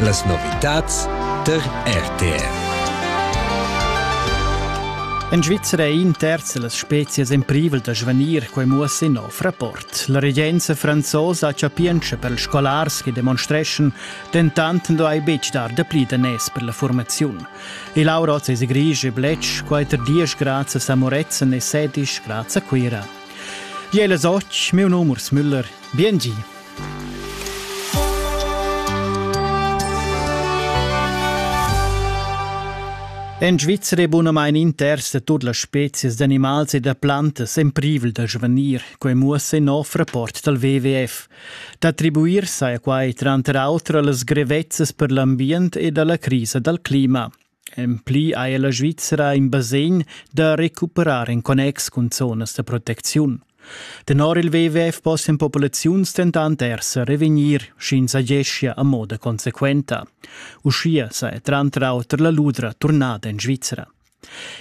Las novitads tar RTR. En Svizzera è in terz las spezias en privel da svanir, quai muossa in nov rapport. La regenza franzosa chapientscha per ils scolars che demonstreschan, dentant non hai betg dar dapli danès per la formaziun. Il Auroz es grisch e blech, quater dies grazie a Moretzen e sedisch grazie a Cuira. Jela Soch, meu nom Urs Müller. Biengi. En Svizra è bunamain inters da tut las spezias d'animals e da plantas en privel da svanir, quai muossa in nov rapport dal WWF. D'attribuir saja quai tranter auter a las grevezzas per l'ambient ed a la crisa dal clima. En pli ha ella svizra in basegn da recuperar en connex cun zonas da protecziun. Tenor il WWF possian populaziuns dentant er sa revegnir, sch'ins ageschia a moda consequenta. Uschia saja tranter auter la ludra turnada en Svizra.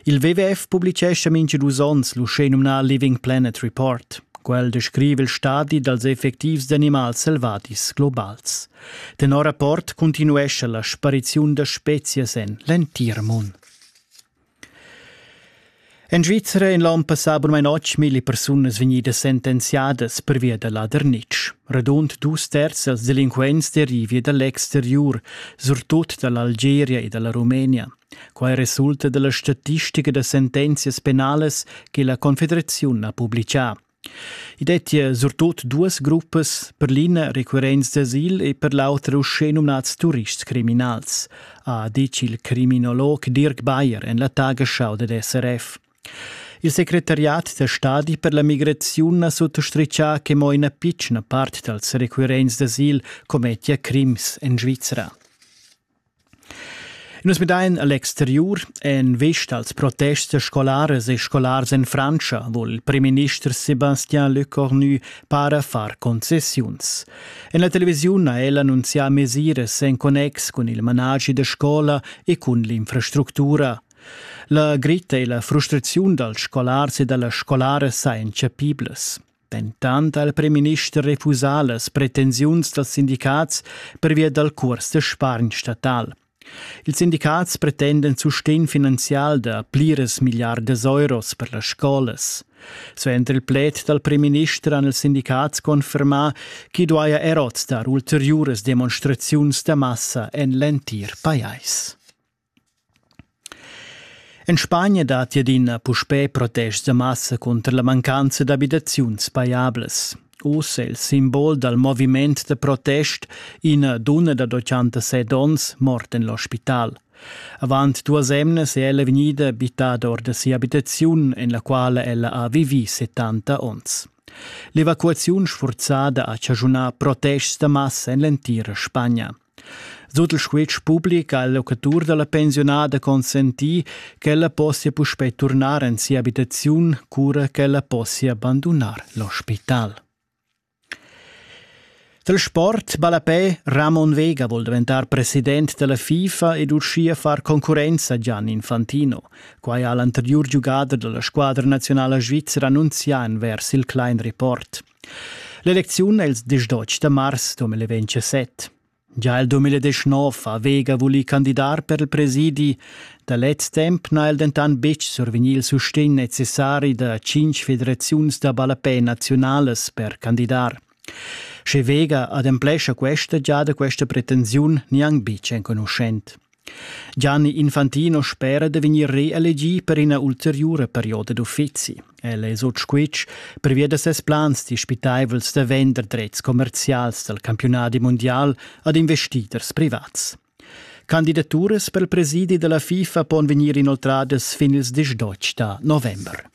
Il WWF publicescha mintga dus onns l'uschenumnà Living Planet Report. Quel descrive il stadi dals effectivs d'animals selvadis globals. Tenor rapport cuntinuescha la spariziun da spezias en l'entir mund. En Svizra in l'onn passà per mai notg mille persunas vegnidas sentenziadas pervia da ladernitsch. Radund dus terzi als delinquents derivia da l'exteriur, surtut da l'Algeria e dalla Rumenia. Quai resulta dalla statistica da sentenzias penalas che la Confederaziun ha publicà. I dettia surtut duas gruppas, per l'ina recurrents d'asil e per l'auter uschè numnads turists criminals, ha ditg il criminolog Dirk Bayer en la Tagesschau dad SRF. Il secretariat da stadi per la migraziun ha sottostritgà che mo ina pitschna part dals recurrents d'asil commettia crims en Svizra. Nus midain a l'exteriur. En vista als protests scolaras e scolars en Frantscha vul il primminister Sébastien Lecornu para far concessiuns. En la televisiun ha el annunzià mesiras en connex cun il managi da scola e cun l'infrastructura. La gritta e la frustraziun dals scolars e da las scolaras sajan chapiblas. Dentant ha il primminister refusà las pretensiuns dals sindicats pervia dal curs da spargn statal. Ils sindicats pretenden sustegn finanzial da pliras milliardas euros per las scolas. Suenter il pled dal primminister han ils sindicats confermà ch'i duaja er oz dar ulteriuras demonstraziuns da massa en l'entir pajais. En Spagna datti adina puspè protests da massa cunter la mancanza d'abitaziuns pajablas. Oz è il simbol dal moviment da protest ina dunna da 87 onns morta en l'ospital. Avant duas emnas è ella vegnida bittada or da sia abitaziun, en la quala ella ha vivì 70 onns. L'evacuaziun sfurzada ha chaschunà protests da massa en l'entira Spagna. Sut il squitsch public ha il locatur dalla pensiunada consenti ch'ella possia puspei turnar en sia habitaziun, cura ch'ella possia bandunar l'ospital. Dal sport ballapè Ramon Vega vuol diventar president della FIFA ed uschia far concurrenza a Gian Infantino. Quai ha l'anteriur giugader della squadra nazionala svizra annunzià envers il Klein Report. L'elecziun els diesch dotg da mars 2017. Gia il 2019 ha Vega vulì candidar per il presidi, da lez temp n'ha el dentant betg survegnì il sustegn necessari da cinq federaziuns da ballapè naziunalas per candidar. Sche Vega ademplescha questa giada questa pretensiun, gnanc betg enconuschent. Gianni Infantino spera da vegnir reelegì per ina ulteriura perioda d'uffizi. El è sut squitsch pervia da ses plans dispitaivels da vender dretgs commerzials dal campiunadi mundial ad investiders privats. Candidaturas per il presidi da la FIFA pon vegnir inoltradas fin ils diesch da november.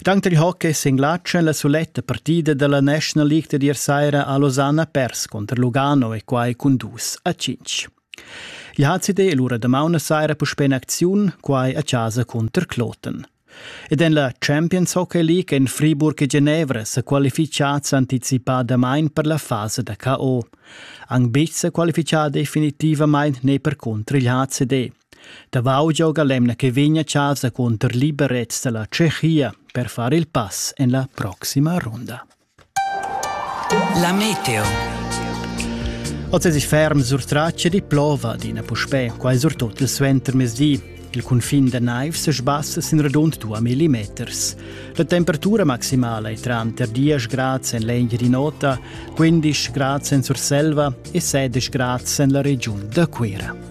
Dank dil hockey s'inglatscha la suletta partida dalla National League dad ier saira a Losanna pers cunter Lugano e quai cun dus a cinc. I ha CD l'ura da mauna saira puspè in acziun, quai a casa cunter Kloten. Ed en la Champions Hockey League en Friburg e Genevra sa qualificads anticipadamain per la fasa da KO. Anc betg sa qualifichà definitivamain ne per cunter il HCD. Davau gioga l'emna che vegn a chasa cunter liberets dalla Tschechia per far il pass en la proxima runda. La meteo. Oz es ich ferm sur tracce di plova adina puspè, quai surtut il suentermezdi. Il cunfin da naiv se sbassa sin radund 2 millimeters. La temperatura maximala è tranter 10 grad en l'Engiadin'Ota, 15 grad en Surselva e 16 grad en la regiun da Cuira.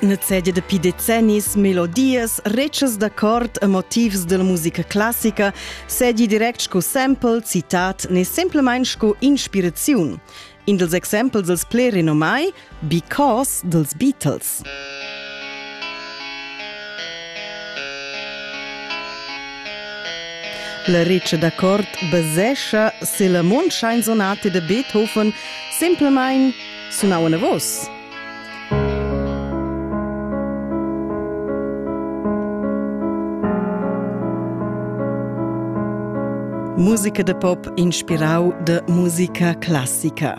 Nezegia dapi decennis melodias, retschas da cort e motivs dalla musica classica segi direct sco sample, citat ne semplamain sco inspiraziun. In dels exempels els ple renomai, Because dels Beatles. La riccia da cort basescha se la mondschain sonate de Beethoven semplamain sunau anavos. Musica da pop inspirau da musica classica.